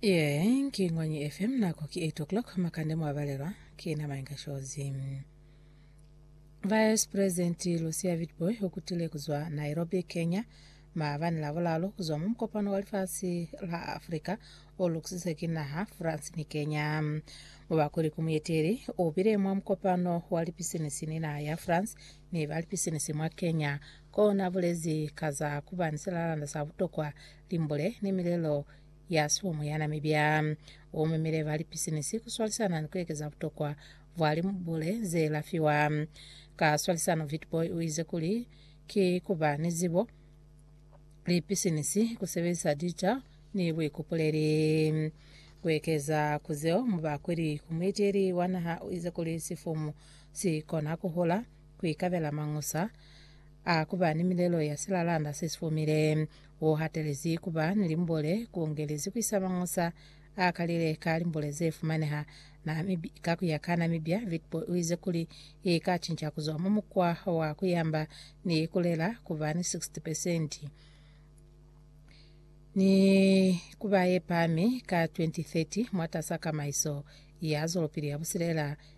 Yee, ki Ngwanyi FM, nako ki 8 o'clock, makande mwabalelwa ki na Mainga Shozi. Vice President Lucia Vitboy ukutile kuzwa Nairobi, Kenya, maabani la bulalo kuzwa mu mukopano wa lifasi la Afrika olukusise ki naha France ni Kenya. Mubakuli ku muyeteli ubile mwa mukopano wa lipisinisi ni naha ya France ni ba lipisinisi mwa Kenya Ko na bulezi ka za ku ba ni silalanda sa butokwa, limbule, ni milelo ya sihomo ya na mibya. U memile ba lipisinisi ku swalisana ni ku ekeza butokwa bwa limbule ze lafiwa. Ka swalisano, Witbooi u ize kuli, Ki ku ba ni zibo, lipisinisi, ku sebelisa dica, ni buikupuleli. Ku ekeza ku zeo, mubakweli ku muiteli wa naha u ize kuli sifumu si kona ku hula, ku ikabela mañusa a ku ba ni milelo ya silalanda se si fumile, wo hatelezi ku ba ni limbole, ku ngelezi ku isa mañusa a kalile ka limbole ze fumaneha Namibia. Ka ku ya ka Namibia, Witbooi u ize kuli i ka cinca ku zwa mwa mukwa wa ku yamba ni ku lela ku ba ni 60 pesenti ni ku ba ye pami ka 2030 mwatas'a kamaiso ya zwelopili ya busilela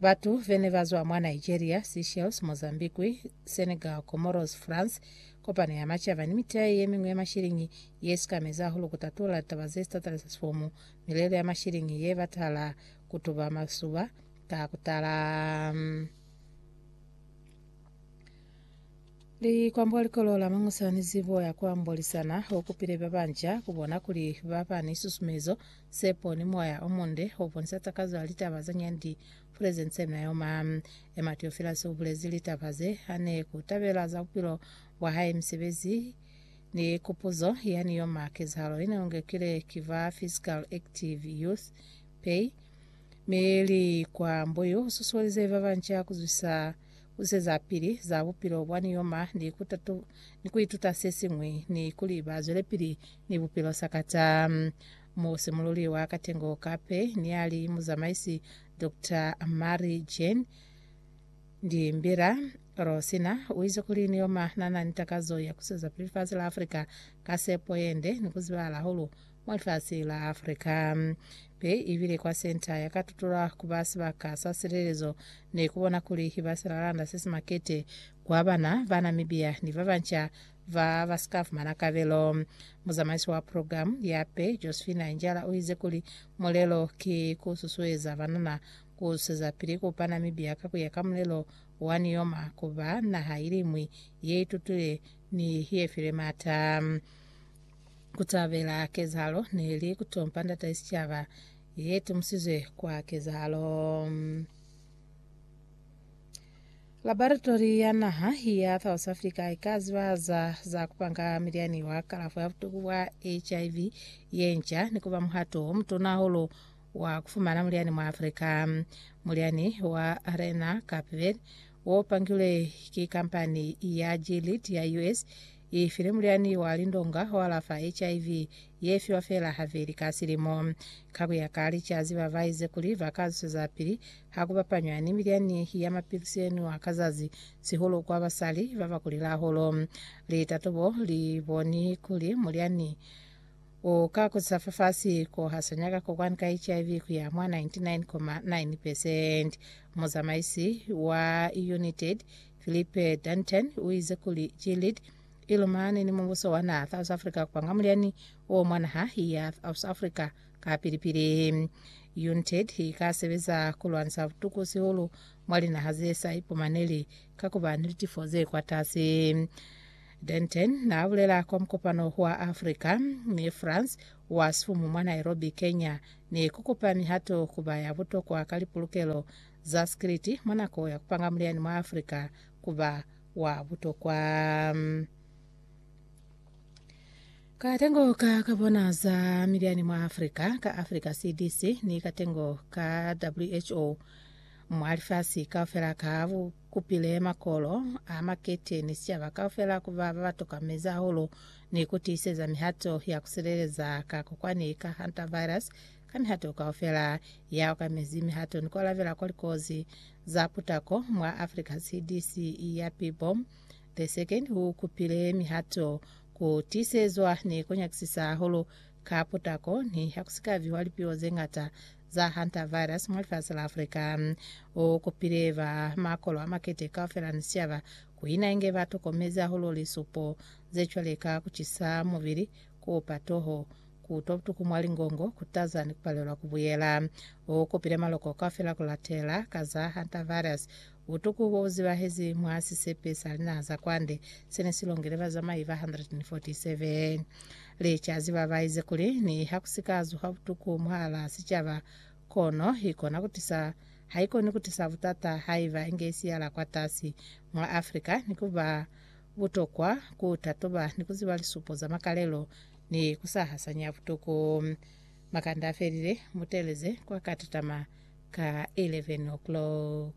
Batu bene bazwa mwa Nigeria, Seychelles, Mozambique, Senegal, Comoros, France, Kopano ya Macaba ni miteya yemiñwi ya mashiliñi yesikamezi hahulu kutatula litaba zesitatalisa sifomu, milelo ya mashiliñi yebatala kutuba masuba ka kutala. Likwambo likolo la mangusa ni zibo ya kuambolisana okupile babanca kubona kuli baba ni susumezo Sepo ni moya o munde o bonisa takazo ya litaba za nyandi Presence na yoma. Emma Theophilus u bulezi litaba ze a ne ku tabela za bupilo bwa hae, misebezi, ni kupuzo ya ni yoma kezahalo ye ne u ngekile ki ba Physical Active Youth, pay, mi li kwa Mbuyu u susuelize ba banca ku zwisa ku se za pili za bupilo bwa niyoma ni ku tatu, ni ku ituta se siñwi, ni kuli ba zwelepili ni bupilo sakata. Mu simululi wa katengo ka pe ni a li muzamaisi Doctor Mary Jane Ndimbira, Rosina u ize kuli niyoma na na ni takazo ya ku seza pili fasi la Afrika ka sepo yende ni ku zibahala hulu mwa lifasi la Africa. Be i bile kwa senta ya ka tutula ku ba sibaka sa silelezo ni ku bona kuli ba silalanda se si makete kwa bana ba Namibia ni ba banca ba ba si ka fumana kabelo. Muzamaisi wa program ya pe, Josephina Njala u ize kuli mulelo ki ku susueza banana ku zwezapili ku pa Namibia ka ku ya ka mulelo wa Nioma ku ba naha iliñwi ye itutile ni ye file mata. kutabela kezahalo neli kutompa ndata sicaba ye tumusizwe kwa kezahalo. Laboratori ya naha ya South Africa ika ziba za za kupanga milyani wa kalafo ya butuku bwa HIV ye nca ni kuba muhato o mutuna hahulu wa kufumana mulyani mwa Africa. Mulyani wa Rena Kapvel wo pangilwe ki kampani ya Gilead ya US I file mulyani wa lindonga o alafa HIV ye fiwa feela haveli ka silimo. Ka ku ya ka licazi, ba ba ize kuli ba ka zwezapili ha ku bapanywa ni milyani ya mapilisi ye nwiwa ka zazi, sihulu kwa basali ba ba kulile hahulu. Litatobo li boni kuli mulyani u ka kutisa fafasi ko hasanya ka kokwani ka HIV ku ya mwa 99.9 pesenti. Muzamaisi wa United Philippe Dantin u ize kuli Gilead i lumane ni mubuso wa naha South Africa kwanga mulyani o mwa naha ya South Africa kapili-pili. UNTAD i ka sebeza ku lwanisa butuku sihulu mwa linaha ze sa ipumaneli ka ku ba ni litifo ze kwatasi. Dantin n'a bulela kwa mukopano wa Africa ni France wa sifumu mwa Nairobi, Kenya, ni ku kupa mihato ku ba ya butokwa ka lipulukelo za sikiliti mwa nako ya ku panga mulyani mwa Africa ku ba wa butokwa. Katengo ka ka bona za milyani mwa Africa ka Africa CDC ni katengo ka WHO mwa lifasi kaufela ka bu kupile makolo a makete ni sicaba kaufela ku ba ba ba toka mezi ahulu ni ku tiiseza mihato ya ku sileleza ka kokwani ka hantavirus Ka mihato kaufela ya okamezi mihato ni ku alabela kwa likozi za putako mwa Africa CDC ya pipo The Second u kupile mihato ku tiisezwa ni ku nyakisisa hahulu ka putako ni ha ku si ka viwa lipiwo ze ngata za hantavirus mwa lifasi la Africa. U kupile ba makolo a makete kaufela ni siaba ku ina inge ba tokomezi hahulu lisupo ze cwale ka ku cisa mubili, ku opa toho, Ku utwa butuku mwa lingongo ku taza ni ku palelwa ku buyela. U kupile maloko kaufela ku latela ka za hantavirus, butuku bo bu zibahezi mwa sisepe sa linaha za kwande se ne si longile bazamai ba 147. Licazi ba ba ize kuli niha ku si ka zuha butuku mwahalaa sicaba, kono i kona ku tisa ha i koni ku tisa butata haiba inge i siyala kwatasi mwa Afrika ni ku ba butokwa ku tatoba ni ku ziba lisupo za makalelo ni ku sa hasanya butuku. Makanda a felile, mu teleze kwa ka tatama ka 11 o'clock.